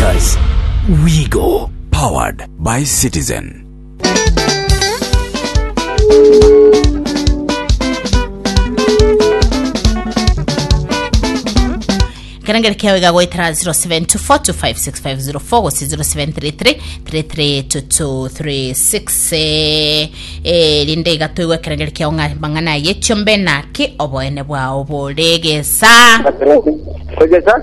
Investors. We go. Powered by Citizen. kerengere kiao igagwetera 0724256504 gose 07333336 eh, eh, rinde igatoigwa ekerengere kiao ng'a mang'ana ayechio mbe naki oboene bwao boregesa Tegesa.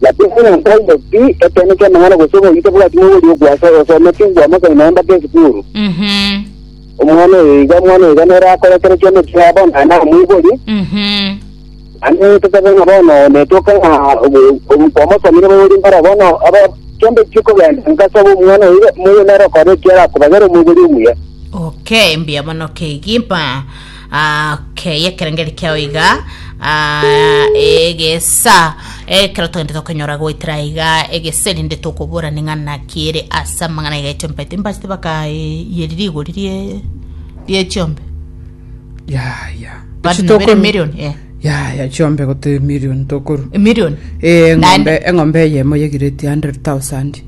Lakini onye nkoigwa ki ekeene ki'amang'ana gose oboyio tabwati mogorio okwasa aye osometi, bwamosani naye mbake esukuru. Mhm. Omwana oyo iga, omwana oyo iga nere akore kera kiambe ekiaye bono naye namoiborie. Mhm. Naende totabe ng'a bono netoka ng'a obo- obo- kwamosomire bogorie mbare bono aba kiambe chikogenda ngasaba omwana oyo iga moyo nere okore ekiarakobagera omoiborie omuya. Okay, mbuya mono kegimpa. Ah, okay, ekerengeri kiao iga ah, egesa ekero togende tokonyora goetera iga egesa erinde tokobora ning'ana kiere ase amang'ana iga etiompete mbachete bakayeri rigori rie rie chiombe ya ya bari Echitokoro- nabere million eh ya ya chiombe gote million tokoru emillion Eh, Nine. eng'ombe eng'ombe eyemo yegireti 100,000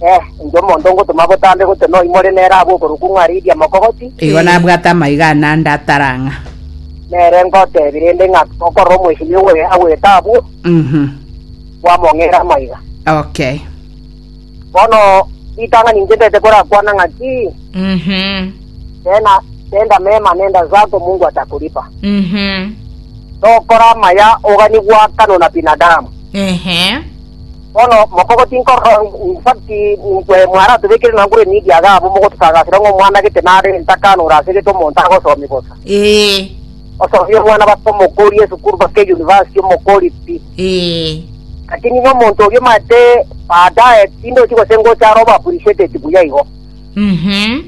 Eh, inche omonto ngotoma botambe gose noimore nere abwo okorokwa ng'a Lidia Mokogoti, Igo Eh. nabwate amaiga ane ande atara ng'a. nere ngotebi rende ng'a okorora omwecheni owe agwete abwo, Mhm. kwamong'era amaiga. Okay. Bono ritang'ani inche ndete korakwana ng'a ki, Mhm. tena tenda mema nenda zako Mungu atakulipa. Mhm. Tokora amaya ogani gwakano na binadamu. Ehe. Bono mokogo tinkorora ng'umba ki inkwe mwaratobekire na ngure nidi iga abwo mogotosagasera ng'a omwana gete nare entakano ore ase gete omonto agosomia bosa. Ee. Osomie omwana baka omokori esukuru baka eyunivasiti omokori pi. Ee. Lakini ng'a omonto oria omanyete baadaye tindochi gose ngocha are obo appreciated buya igo. Mhm.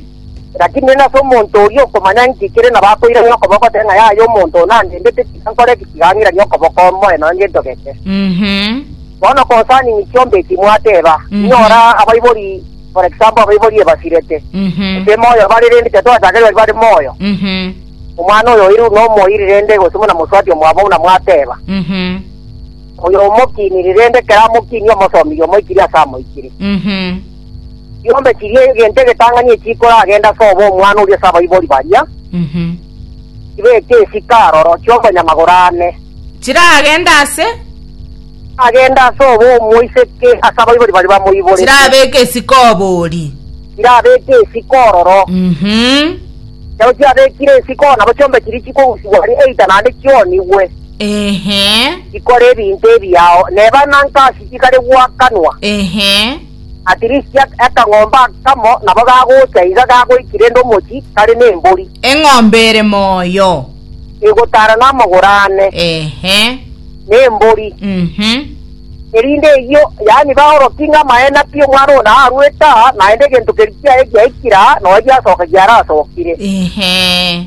Lakini nere nase omonto oria okomanya inki kere nabo akoirania okoboko goteba ng'a yaya omonto ona andendete tiga nkore ki tiga ng'iranie okoboko omoe nonya gento geke. Mhm. Bono concerning chiombe eki mwateba, Mhm. inyora abaibori for example abaibori ebasirete. Mhm. Gose moyo bare rende tiatwachakire bari bare moyo. Mhm. Omwana oyo oirwe buna omoiri rende gose buna mosubati omwabo buna mwateba. Mhm. Oyo omokiniri rende kera amokinie omosomirie omoikiri ase amoikire. Mhm. Chiombe chiria egento egetang'ani eki chikoragenda ase obo omwana oria ase abaibori baria, chibeke esika aroro, chiombe na magoro ane, Chiragende ase, chiragende ase obo omoiseke ase abaibori baria bamoiborete, chirabeke esika obori. chirabeke esika ororo. Mhm. Ekero chiabekire esika ororo nabo chiombe chiria chikogusigwa aria eita naende chionigwe. Ehe. Ikora ebinto ebiao neba na nkasi igare gwakanwa. Ehe. At least akang'ombe akamo nabo gagocha iga gagoiki rende omochi kare ne embori. Eng'ombe ere moyo. Egotara na amagoro ane. Ehe. Ne embori. Mhm. Erinde eyio yaani baoroki ng'a amaene pi omwana oyo na aruete aa naende egento keria kiaye giaikire aa noe giasoka giarasokire. Ehe.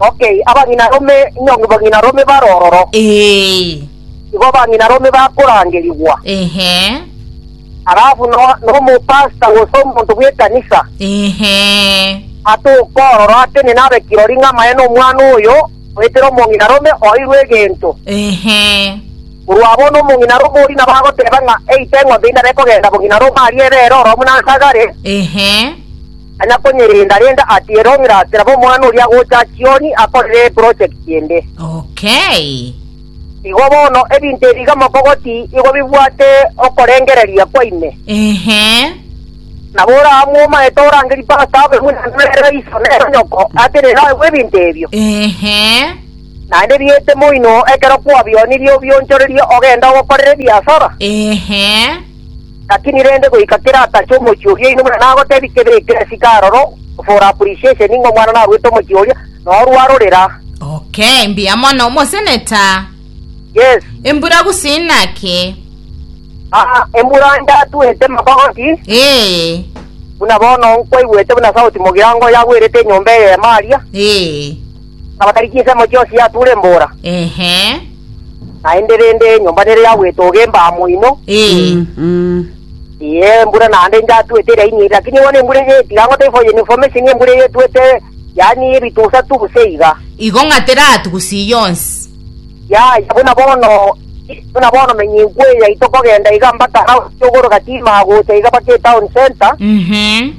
Okay, abang'ina rome nyongo bang'ina rome bare ororo. Ee. Igo bang'ina rome bakorangerigwa. Ehe. Alafu no nomo pastor gose omonto bw'ekanisa. Ehe. Atoka ororo atene nabe kirori ng'a amaene omwana oyo oetera omong'ina rome oirwe egento. Ehe. Korwa bono omong'ina rome oria nabo agoteba ng'a eite eng'ombe inde are kogenda bong'ina rome aria ebere oromu nansa agare. Ehe. Tanya konyerenda-renda ati erong'ira ase nabo omwana oria agocha chioni akorere eproject ende. Okay. Igo bono ebinto ebi iga mokogoti igo bibwate okorengereria kwa ime. Ehe. Nabo oraamue omaete orangerie pastor abe buna nere o iso nere o nyoko atenene naye bw'ebinto ebio. Ehe. Naende biete moino ekero kwabionirie obionchorerie ogende ogokorera ebiasara. Ehe. Lakini rende goika kera atache omochie oria oino buna nagotebi kebe ekeresike aroro for appreciation ng'a omwana narwete omochie oria na orwa arorera. Okay, mbuya mono omosenator. Yes. Embura gose inaki? Ah, embura ndatwete magoti. Ee. Buna bono nkwaigwete buna sauti mogirango yagwerete enyomba eye ya Maria. Ee. Abatari chinse mochie osiature embora. Ehe. naende rende enyomba nere ya gwetoga embaa moino, Ee. Mm. ee, embura naende inchatuete eraini ere, lakini bono embura eye tiga ngote for your information, embura eye etuete yaani ebitusa tu gose iga. Igo ng'atera ati gusii yonsi. Yaya, buna bono, buna bono menya enku eye yaito kogenda iga mbaka house yogoroka timaa gocha iga baka etown center, Mhm.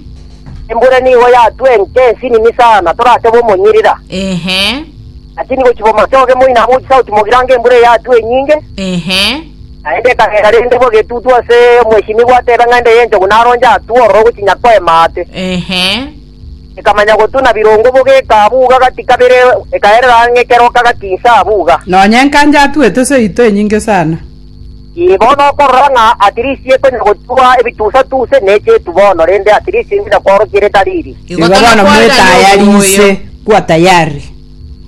embura nigo yatue enke ensinini sana, toratebe omonyirira. Ehe. Lakini gochia bomatoge moino amo chisauti mogirange embura eyatwe enyinge, Ehe. naende ekagenda rende bobe etutu ase omwesinigwa atebe ng'a ende y'enchogu naronche atwo ororo gochinya koema aate. Ehe. Ekamanya gotuna birongo bobe ekaabuga gati kabere ekaerera ang'e kera okagati inse abuga. Nonya enkancha atuete seito enyinge sana. Igo nokorora ng'a atirisi ekonya gochua ebitusa-tuse ne chietu bono, rende atirisi ende nakworokia ere tariri. Igo bono mwetayarise, kuwa tayari.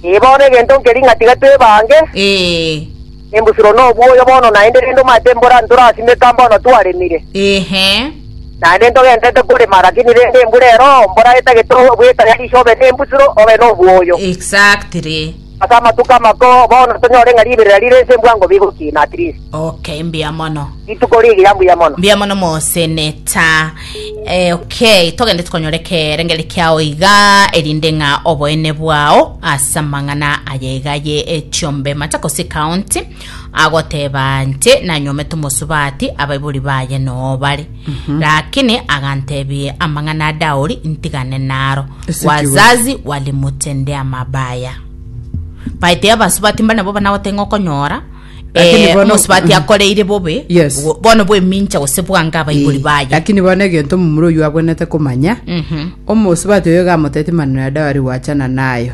Ee, bono egento nkeri ng'a tiga twebange. Ee. Embusuro na obwoyo bono naende, rende omate embura ntorasimeka mbono twaremire. Ehe. Naende ntogentete korema, lakini rende embura ero, mbora etagete obwetayarishe obe nembusuro, obe nobwoyo. Exactly. Ase amatuko amakoo, bono tonyore ng'a riberera rire inse mbwango bigo ki, na at least. Okay, mbuya mono. Rituko rigiya mbuya mono. mbuya mono moseneta eh, okay togende tokonyore kerengeri kiao iga erinde ng'a oboene bwao ase amang'ana aye iga ye echiombe machakos county Agoteba nche nanyomete omosubati abaibori baye noo bare. Rakini agantebie amang'ana a Dauri ntigane naro. Ase ki Wazazi walimutendea mabaya. Baete abasubati mbare nabo banagote ng'a okonyora Lakini eh, bono- omosubati Mhm. akoreire bobe Yes. bo- bono bwemincha gose bwange abaibori baye. lakini bono egento omomura oyo abwenete komanya Mhm. omosubati oyo gamoteti maneno ya dawari gwachana nayo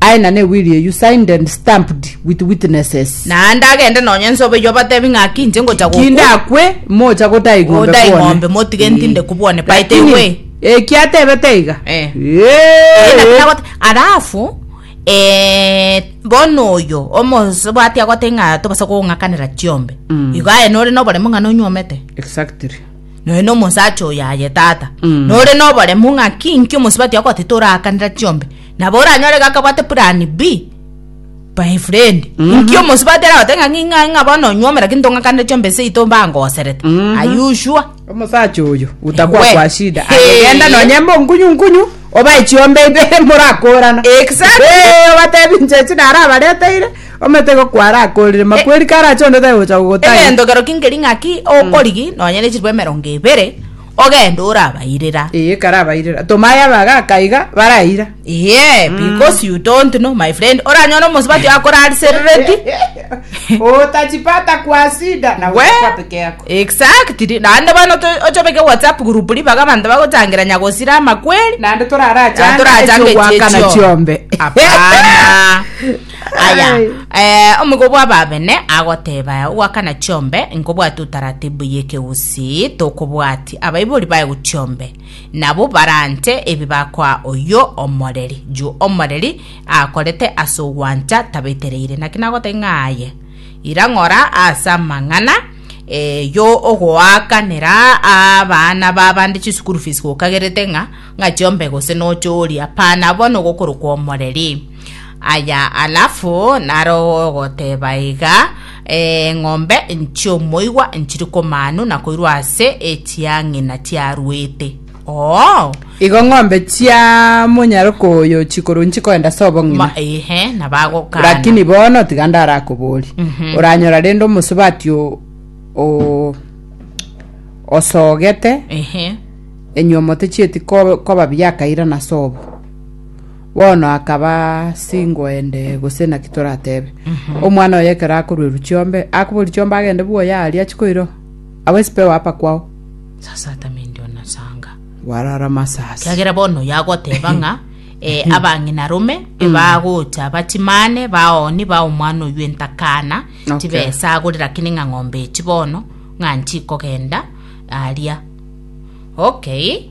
Aye na ne will you signed and stamped with witnesses. Naende agende nonye nsobe eye obatebi ng'a Aki inche ngocha gokwa. Ki ndakwe, mocha gotai ng'ombe Gotai kwone? ng'ombe, motige ntinde kubwane, by the Lakini, way. eki atebete iga? Eh. Eeh, naki Eeh. nagote- Alafu eh, bono oyo omosubati agote ng'a tobasa kong'akanera chiombe Mm. igo aye nore noboremu ng'a nonywomete Exactly. noe nomosacha oyo aye tata Mm. nore noboremu ng'a ki inki omosubati agote torakanera chiombe Nabo oranyore iga akabwate plan B. My friend, inki omosubati aragote ng'a ng'ing'a ng'ing'a bono onywomera ki ntong'akanire chiombe ase eito mbangoserete. Are you sure? omosacha oyo utakwa Ewe. kwa shida Hey. agegenda nonye monkunyu nkunyu obae chiombe ibere morakorana Exactly. Eh, obatebi inche echi narabareteire ometego kwarakorire makweri karache onde otagocha gogotari egento kerokio nkeri ng'aki okorigi nonye ne chiribu emerongo ebere ogende orabairera. Eye karabairera. Toma aye abagaaka iga baraira. Eye, because you don't know, my friend. Oranyore omosubati akorariserereti. Otachipata kwa sida na We, kwa peke yako. exactly. Naende bono to- ochobeke WhatsApp group ribaga abanto bagochangira nyagosira amakweri. Naende torarachanga Torachanga echiogwakana echio. chiombe. Hapana. Aya, eh, omogo bw'ababene agoteba aya, ogwakana chiombe nkobwati utaratibu y'ekegusii tokobwati, abaibori baye gochiombe nabo barante ebi bakoa oyo omoreri, juu omoreri akorete ase ogwancha tabetereire. Naki nagoteba ng'a aye ira ng'ora ase amang'ana eh, yo ogoakanera abana b'abande chisukuru fees gokagerete ng'a ng'a chiombe gose nochoria pana bono gokorokwa omoreri Aya alafu naroe ogoteba iga eng'ombe nchiomoigwa nchiri komanu na koirwa ase echiang'ina chiaruete oo igo ng'ombe chia monyaroka oyo chikoro nchikoenda ase obong'ina ma ehe na bagokana lakini bono tiga ndarakobori oranyora rende omosubati o- o- osogete ehe enyuomote chieti ko- koba biakairana sobo Bono akaba singoende, gose naki toratebe? Omwana oye ekero akoruerwa chiombe, akoboria chiombe agende bwoye aaria achi koirwa? Agwo esipeo apa kwao? Sasa atame indio na sanga. Bwarara masasi. Kiagera bono oyo agoteba ng'a eh, abang'ina rome ebagocha bachimane baoni ba omwana oyio entakana Okay. tibesagore lakini ng'a ng'ombe echi bono ng'a nchikogenda aria okay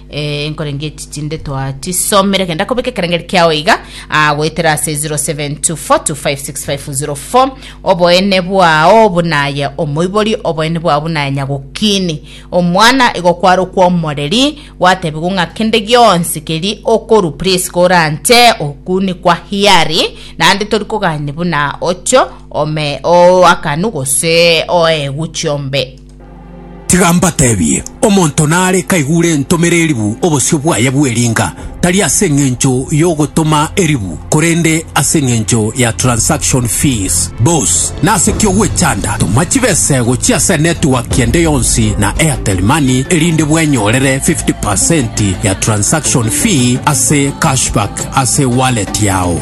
Eh, nkorenge echi chinde twachisomire kenda kobeka ekerengeri kiao iga ah, goetera ase 0724256504 oboene bwao bunaye omoibori oboene bwao bunaye nyagokini omwana igo kwarokwa omoreri gwatebigwa ng'a kende gionsi keri okoru please koranche okuni kwa hiari naende tori kogani buna ocho ome oakanu gose oegu chiombe Tiga mbatebie, omonto nare kaigure entomera eribu obosio bwaye bw'eringa, tari ase engencho y'ogotoma eribu, korende ase engencho ya transaction fees. Bos, nase ki ogwechanda? Toma chibesego chia ase network ende yonsi na Airtel Money erinde bwenyorere 50% ya transaction fee ase cashback ase wallet yao.